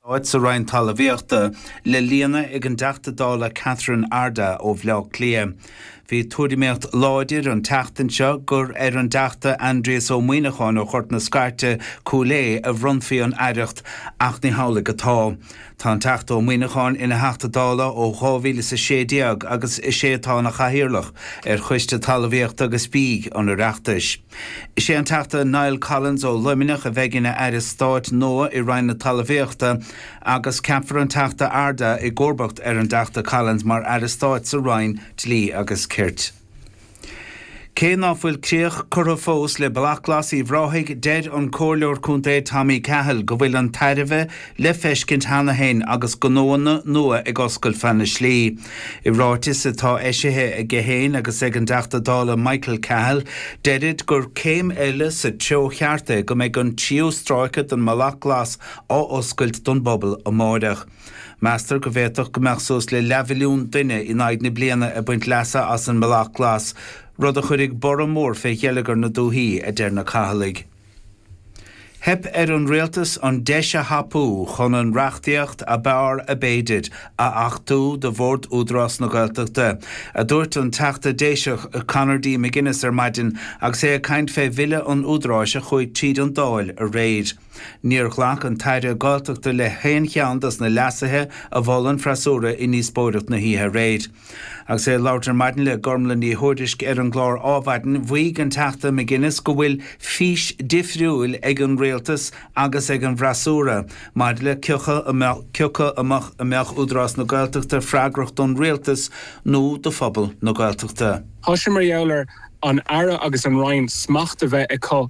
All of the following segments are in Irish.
Stáit sa Roinn Talamhaíochta le líonadh ag an dTeachta Dála Catherine Ardagh ó Bhleá Cliath. Bhí tuairimíocht láidir an tseachtain seo gur ar an dTeachta Aindrias Ó Muíneacháin ó Ghort na Scairte, Cúil Aodh a bhronnfaí an Aireacht ach ní hamhlaidh atá. Tá an Teachta Ó Muíneacháin ina Theachta Dála ó 2016 agus is é atá ina Chathaoirleach ar Choiste Talamhaíochta agus Bídh an Oireachtais. Is é an Teachta Niall Collins ó Luimneach a bheidh ina Aire Stáit nua i Roinn na Talamhaíochta agus ceapfar an Teachta Ardagh i gcomharbacht ar an dTeachta Collins mar Aire Stáit sa Roinn Dlí agus Cirt. Cé ná fuil críoch curtha fós le Bealach Glas Uíbh Ráthaigh deir an Comhairleoir Contae Tommy Cahill go bhfuil an tairbhe le feiscint cheana féin agus gnóanna nua ag oscailt feadh na slí. I ráiteas atá eisithe aige féin agus ag an dTeachta Dála Michael Cahill, deirid gur céim eile sa treo cheart é go mbeidh an tríú stráice den mBealach Glas á oscailt don bpobal amáireach. Meastar go bhféadfadh go mbeadh suas le leathmhilliún duine in aghaidh na bliana ag baint leasa as an mBealach Glas, rud a chuirfidh borradh mór fé gheilleagar na dúthaí, a deir na Cahillaigh. Theip ar an Rialtas an deis a thapú chun an reachtaíocht ab fhearr ab fhéidir a achtú do Bhord Údarás na Gaeltachta, a dúirt an Teachta Déiseach Conor D. McGuinness ar maidin agus é ag caint fé Bhille an Údaráis a chuaigh tríd an Dáil aréir. Níor ghlac an tAire Gaeltachta le haon cheann dos na leasuithe a mhol an freasúra i ndíospóireacht na hoíche aréir. Agus é ag labhairt ar maidin le Gormlaith Ní Thuairisg ar an gclár Adhmhaidin, mhaígh an Teachta McGuinness go bhfuil fís difriúil ag an Rialtas agus ag an bhfreasúra maidir le cioca a mbeadh Údarás na Gaeltachta freagrach don Rialtas nó do phobal na Gaeltachta. Tá sé mar gheall ar an Aire agus an Roinn smacht a bheith acu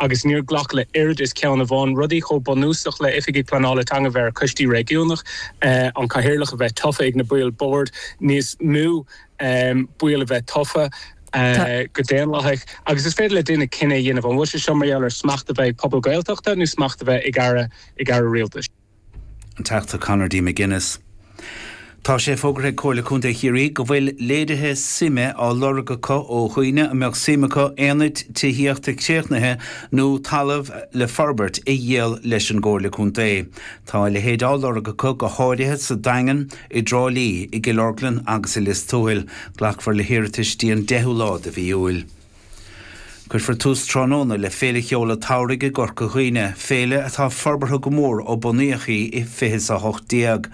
agus níor ghlac le oiread is ceann amháin, rudaí chomh bunúsach le Oifigigh Pleanála Teanga bheith ar Choistí Réigiúnach, an Cathaoirleach a bheith tofa ag na baill Boird níos mó baill a bheith tofa go daonlathach, agus is féidir le duine cinneadh a dhéanamh an bhfuil sé seo mar gheall ar smacht a bheith ag pobal Gaeltachta nó smacht a bheith ag Aire Rialtais. An Teachta Conor D. McGuinness. Tá sé fógartha ag Comhairle Contae Chiarraí go bhfuil léirithe suime á lorg acu ó dhaoine a mbeadh suim acu aonaid tithíochta críochnaithe nó talamh le forbairt a dhíol leis an gComhairle Contae. Tá a leithéid á lorg acu go háirithe sa Daingean, i dTrá Lí, i gCill Orglan agus i Lios Tuathail. Glacfar le hiarratais dtí an 10ú lá de mhí Iúil. Cuirfear tús tráthnóna le Féile Cheoil an tSamhraidh i gCorca Dhuibhne, féile atá forbartha go mór ó bunaíodh í i 2018.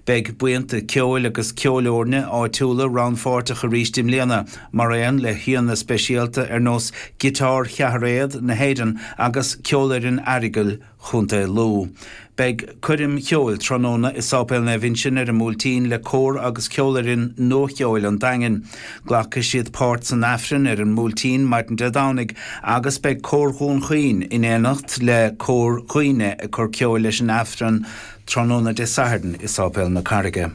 Beidh buíonta ceoil agus ceolfhoirne áitiúla rannpháirteach arís i mbliana, mar aon le haíonna speisialta ar nós Giotár Cheathairéad na hÉireann agus Ceolfhoireann Aireagail, Chontae Lú. Beidh coirm cheoil tráthnóna i Sáipéal Naomh Uinseann ar an mBuailtín le Cór agus Ceolfhoireann Nua-Cheoil an Daingin. Glacfaidh siad páirt san Aifreann ar an mBuailtín maidin Dé Domhnaigh agus beidh Cór Dhún Chaoin in éineacht le Cór Dhuibhne ag cur ceoil leis an Aifreann tráthnóna Dé Sathairn i Sáipéal na Carraige.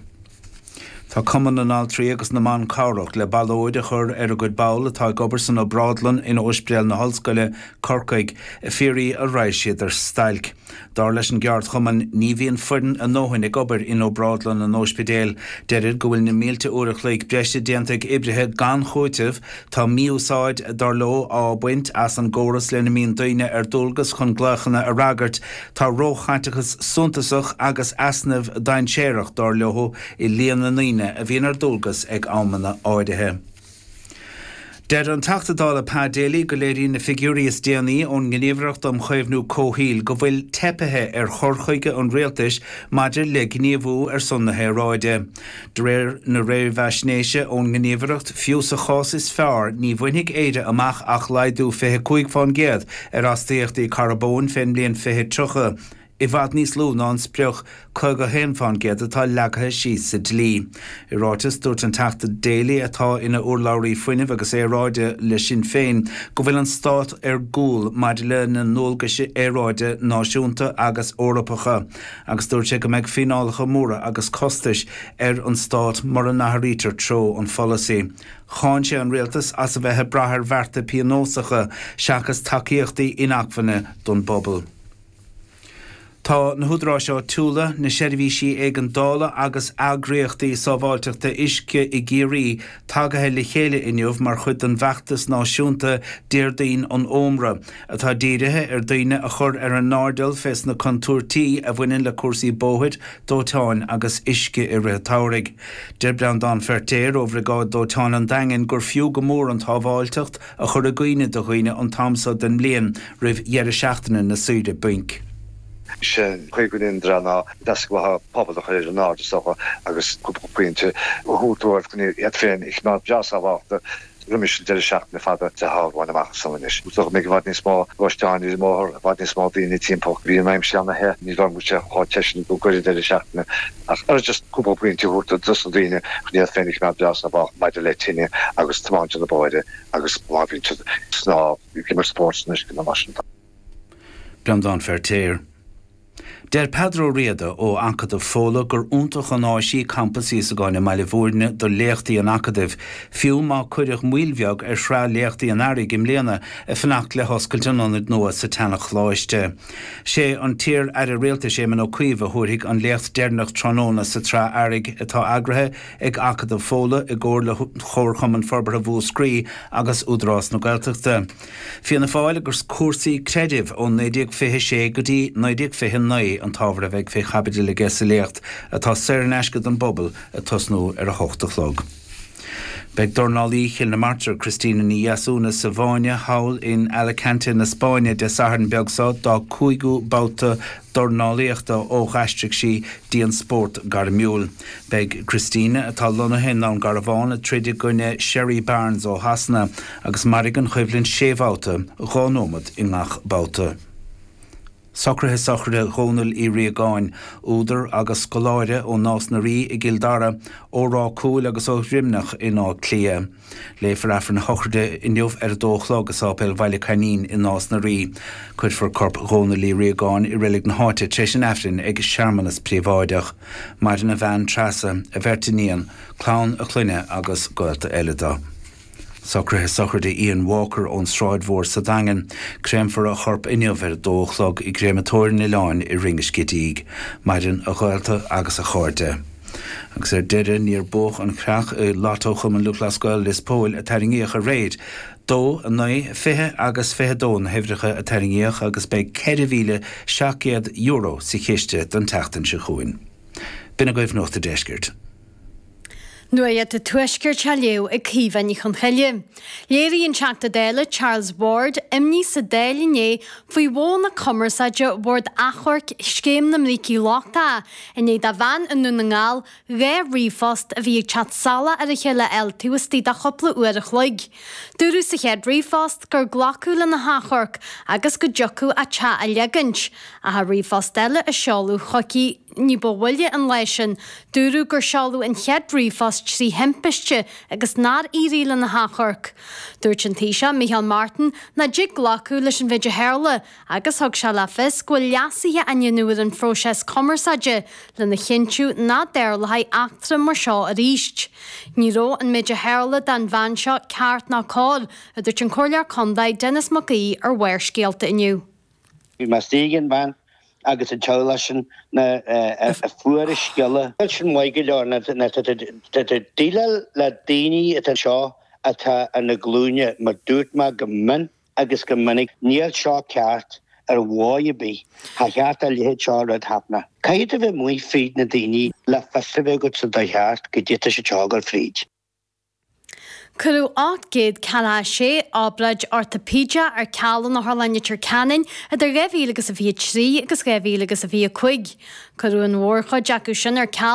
Tá Cumann na nAltraí agus na mBan Cabhrach le ballóid a chur ar a gcuid ball atá ag obair san obrádlann in óispidéal na hOllscoile, Corcaigh, ag fiafraí an raghadh siad ar stailc. Dar leis an gceardchumann ní bhíonn foireann a ndóthain ag obair in obrádlann an óispidéil. Deirid go bhfuil na mílte uair a chloig breise déanta ag oibrithe gan chúiteamh Tá mí-úsáid, dar leo, á baint as an gcóras lena mbíonn daoine ar dualgas chun glaochanna a fhreagairt. Tá róchaiteachas suntasach agus easnamh dainséarach, dar leo, i líon na ndaoine a bhíonn ar dualgas ag amanna áirithe. Deir an Teachta Dála Pa Daly go léiríonn na figiúirí is déanaí ón nGníomhaireacht um Chaomhnú Comhshaoil go bhfuil teipithe ar chur chuige an Rialtais maidir le gníomhú ar son na haeráide. De réir na réamhaisnéise ón nGníomhaireacht, fiú sa chás is fearr, ní bhainfidh Éire amach ach laghdú 25% ar astaíochtaí carbóin fén mbliain 2030, i bhfad níos lú ná an sprioc 51% atá leagtha síos sa dlí. I ráiteas, dúirt an Teachta Daly, atá ina urlabhraí fuinnimh agus aeráide le Sinn Féin, go bhfuil an Stát ar gcúl maidir lena ndualgaisí aeráide náisiúnta agus Eorpacha. agus dúirt sé go mbeidh fíneálacha móra agus costais ar an Stát mura n-athraítear treo an pholasaí. Cháin sé an Rialtas as a bheith ag brath ar bhearta pionósacha seachas tacaíochtaí inacmhainne don bpobal. Tá na húdaráis áitiúla, na seirbhísí éigeandála agus eagraíochtaí sábháilteachta uisce i gCiarraí Tagaithe le chéile inniu mar chuid den bhfeachtas náisiúnta Déardaoin an Ómra, atá dírithe ar daoine a chur ar a n-airdeall fé sna contúirtí a bhaineann le cúrsaí bóthair, dóiteáin agus uisce i rith an tsamhraidh. Deir Breandán Feirtéar ó Bhriogáid Dóiteáin an Daingin gur fiú go mór an tsábháilteacht a chur i gcuimhne do dhaoine an t-am so den mbliain roimh dheireadh seachtaine na saoire bainc. sin, cé go ndéantar an deasghlathá pobal a chur ar an airde so agus cúpla pointe a thabhairt dóibh chun iad féin a choimeád breá sábhálta roimis an deireadh seachtaine fada atá romhainn amach san anois. Go mbeidh i bhfad níos mó gluaisteáin ar an mbóthar, i bhfad níos mó daoine timpeall, bhí an aimsir ana-the, ní bheidh sé chomh te sin i gcomhair an deireadh seachtaine as agus just cúpla pointe a thabhairt dos na daoine chun iad féin a choimeád breá sábhálta maidir le tine agus tiomáint ar na bóithre agus má bhíonn siad ag snámh, ag imirt spóirt san uisce nó mar sin. Breandán Feirtéar. Deir Peadar Ó Riada ó Acadamh Fódhla gur iontach an áis í Campas Íosagáin i mBaile Mhúirne do léachtaí an Acadaimh, fiú má cuireadh moill bheag ar shraith léachtaí an Earraigh i mbliana ag fanacht le hoscailt an ionaid nua sa tseana-Choláiste. Sé an t-iar Aire Rialtais Éamon Ó Cuív a thabharfaidh an léacht deireanach tráthnóna sa tsraith Earraigh atá eagraithe ag Acadamh Fódhla i gcomhar le Chomharchumann Forbartha Mhúscraí agus Údarás na Gaeltachta. Fianna Fáil agus cúrsaí creidimh ó 1926 go dtí 1929 an t-ábhar a bheidh fé chaibidil aige sa léacht atá saor in aisce don bpobal ag tosnú ar a hocht a chlog. Beidh dornálaí Chill na Martra, Christina Ní Dheasúna sa bhfáinne thall in Alicante na Spáinne Dé Sathairn beag so, dá cúigiú babhta dornálaíochta ó dh'aistrigh sí go dtí an spórt gairmiúil. Beidh Christina, atá lonnaithe i nDún Garbhán, ag troid i gcoinne Sherry Barnes ó Shasana agus mairfidh an choimhlint sé bhabhta, dhá nóimeat i ngach babhta. Socruithe Sochraide Dhónaill Uí Riagáin, údar agus scoláire ó Nás na Rí i gCill Dara, ó Ráth Cúil agus ó Dhroimneach in Áth Cliath. Léifear Aifreann a shochraide inniu ar a dó a chlog i Sáipéal Bhaile Coimín i Nás na Rí. Cuirfear corp Dhónaill Uí Riagáin i reilig na háite tar éis an Aifrinn ag searmanas príobháideach. Maireann a bhean Treasa, a bheirt iníon, clann a chlainne agus gaolta eile dó. Socruithe sochraide Ian Walker ón Sráid Mhór sa Daingean. Créamfar a chorp inniu ar a dó a chlog i gCréamatóir an Oileáin i Rinn an Scidígh. Maireann a ghaolta agus a chairde. Agus ar deireadh níor buadh an chreach i Lotto Chumann Lúthchleas Gael Lios Póil a tarraingíodh aréir. Dó, a naoi, fiche agus fiche dó na huimhreacha a tarraingíodh agus beidh €4,700 sa chiste don tseachtain seo chugainn. B'in agaibh Nuacht a' Deiscirt. Nuacht a' Tuaiscirt á léamh ag Caoimhe Ní Chonchoille. Léirigh an Teachta Dála Charles Ward imní sa Dáil inné faoi mhodhanna cumarsáide Bhord Achomhairc Scéim na mBrící Lochtacha i ndiaidh do bhean i nDún na nGall dhá ríomhphost a bhí ag teacht salach ar a chéile a fháil taobh istigh de chupla uair a chloig. Dúradh sa chéad ríomhphost gur glacadh lena hachomharc agus go dtiocfadh a teach a leagaint, ach i ríomhphost eile a seoladh chuici ní ba mhoille an lá sin dúradh gur seoladh an chéad ríomhphost trí thimpiste agus nár éirigh lena hachomharc. Dúirt an Taoiseach Micheál Martin nach dtig glacadh leis an mhéid a tharla agus thug sé le fios go bhfuil leasuithe á ndéanamh ar an phróiseas cumarsáide lena chinntiú nach dtarlóidh eachtra mar seo arís. Ní raibh an méid a tharla don bhean seo ceart ná cóir, a dúirt an Comhairleoir Contae Denis Mac Aoidh ar Bharrscéalta inniu. Bhí mé istigh ag an bhean agus an teaghlach sin nuair a fuair an scéala. Níl sin maith go leor nó tá déileáil le daoine atá anseo atá ar na glúine mar dúirt mé go min. agus go minic, Níl seo ceart ar mhodh ar bith, cha cheart dá leithéid seo rud a chaitheamh. Caithfidh tú bheith amuigh fríd na daoiní le fios a bheith agat sa dóigh cheart goidé tá siad ag gabháil fríd. Cuireadh 846 obráid ortaipéideach ar ceal in Otharlann Leitir Ceanainn idir 2000 agus a 23 agus 2000 agus a 25. Cuireadh an mhór chuid acu sin ar ceal.